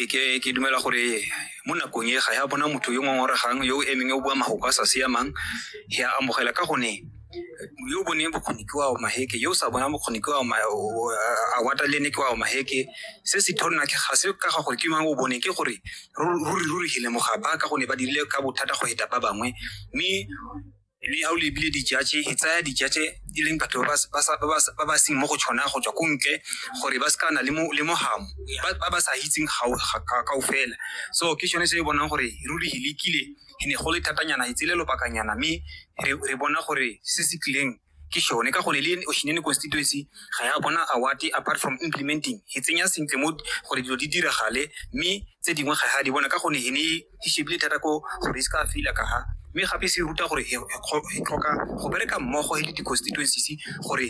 e ke ke dumela gore mo nakong e ga ya bona motho yo ngongoregang yo o emeng o bua magoko a sa siamang ya amogela ka gone yo o boneng bokgoni ke wa maheke yo o sa bonang bokgoni ke wa a wata le ne ke wa maheke se se thonna ke ga se ka ga gore ke mang o bone ke gore ruri ruri gile mogapa ka gone ba dirile ka bothata go heta ba bangwe mme mme ga o lebile dijatše e tsaya dijatše e leng batho ba ba- ba sa- ba ba- ba ba seng mo go tshwana go tswa ko ntle gore ba se ka na le mo- le mogamo ba ba ba sa itseng gao- ga- ga- kao fela so ke sone se e bonang gore ruri e lekile e ne go le thatanyana e tsele lobakanyana mme re re bona gore se se tlileng ke sone ka gone le oshinene constituency ga ya bona award apart from implementing e tsenya sentle mo gore dilo di diragale mme tse dingwe ga ya di bona ka gone e ne e shebile thata ko gore e se ka feila ka ha mme gape se ruta gore e tlhoka go bereka mmogo e le di-constituencies gore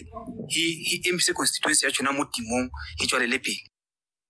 e emise constituency ya tshona mo timong e tswalele pele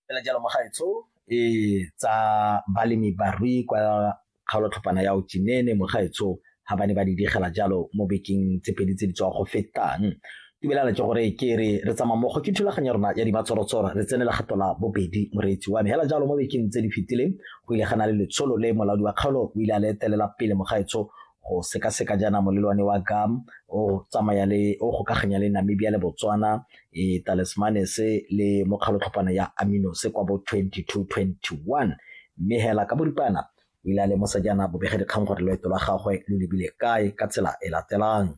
fela jalo mogaetsho e tsa balemi barui kwa kgaolotlhopana ya otinene mogaetsho ha ba ne ba di digela jalo mo bekeng tse pedi tse di tswa go fetang tibelana ke gore ke re re tsamaya mmogo ke thulaganya rona ya dibatsorotsoro re tsene legato la bobedi moreetsi wa me hela jalo mo bekeng tse di fetileng go ile gana le letsholo le molaodi wa kgaolo o ile a le etelela pele mogaetsho go sekaseka jaana molelwane wa gam o tsamaya le o gokaganya le namibia le botswana e talismanes le mokgalotlhopana ya aminos kwa bo 2221 mme hela ka boripana O ile a lemosa jaana bobegadikgang gore loeto lwa gagwe lo lebile kae ka tsela e latelang.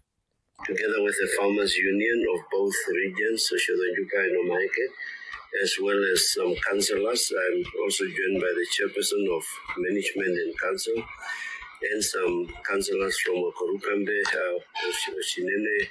Together with the Farmers Union of both regions, Soshodajuka and Omaeke, as well as some councillors, I'm also joined by the chairperson of management and council, and some councillors from Okorukambe, uh, Oshinene,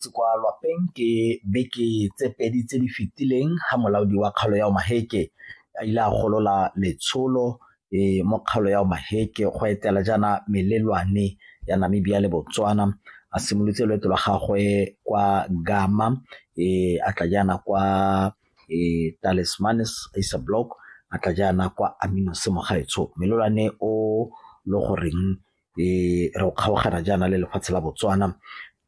Ke kwa lwapeng ke beke tse pedi tse di fetileng ga molaodi wa kgaolo ya Omaheke a ile a golola letsholo e mo kgaolo ya Omaheke go etela jaana melelwane ya Namibia le Botswana a simolotse loeto lwa gagwe kwa Gama e a tla jaana kwa e Talismanis Acer Block a tla jaana kwa Aminos Mogaetsho melelwane o le goreng re o kgaogana jaana le lefatshe la Botswana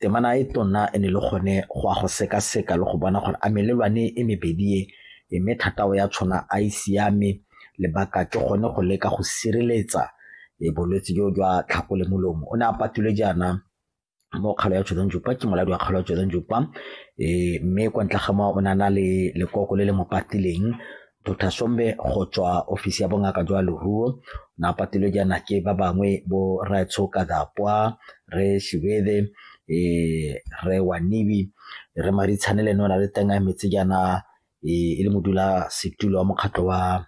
temana e tona e ne le gone go a go sekaseka le go bona gore a melelwane e mebedi e e mme thatao ya tshwana a e siame lebaka ke gone go leka go sireletsa e bolwetse jo jwa tlhako le molomo o ne a patile jaana mo kgalo ya Jordan Jupa ke moladi wa kgalo ya Jordan Jupa e mme kwa ntle ga moo o ne a na le lekoko le le mo patileng Dr. Sombe go tswa ofisi ya bongaka jwa leruo na patilwe jaana ke ba bangwe bo Raetsho Kadapwa re Shibede e re Wanibi re Maritshane le nona le teng a emetse jaana e le modula setulo wa mokgatlho wa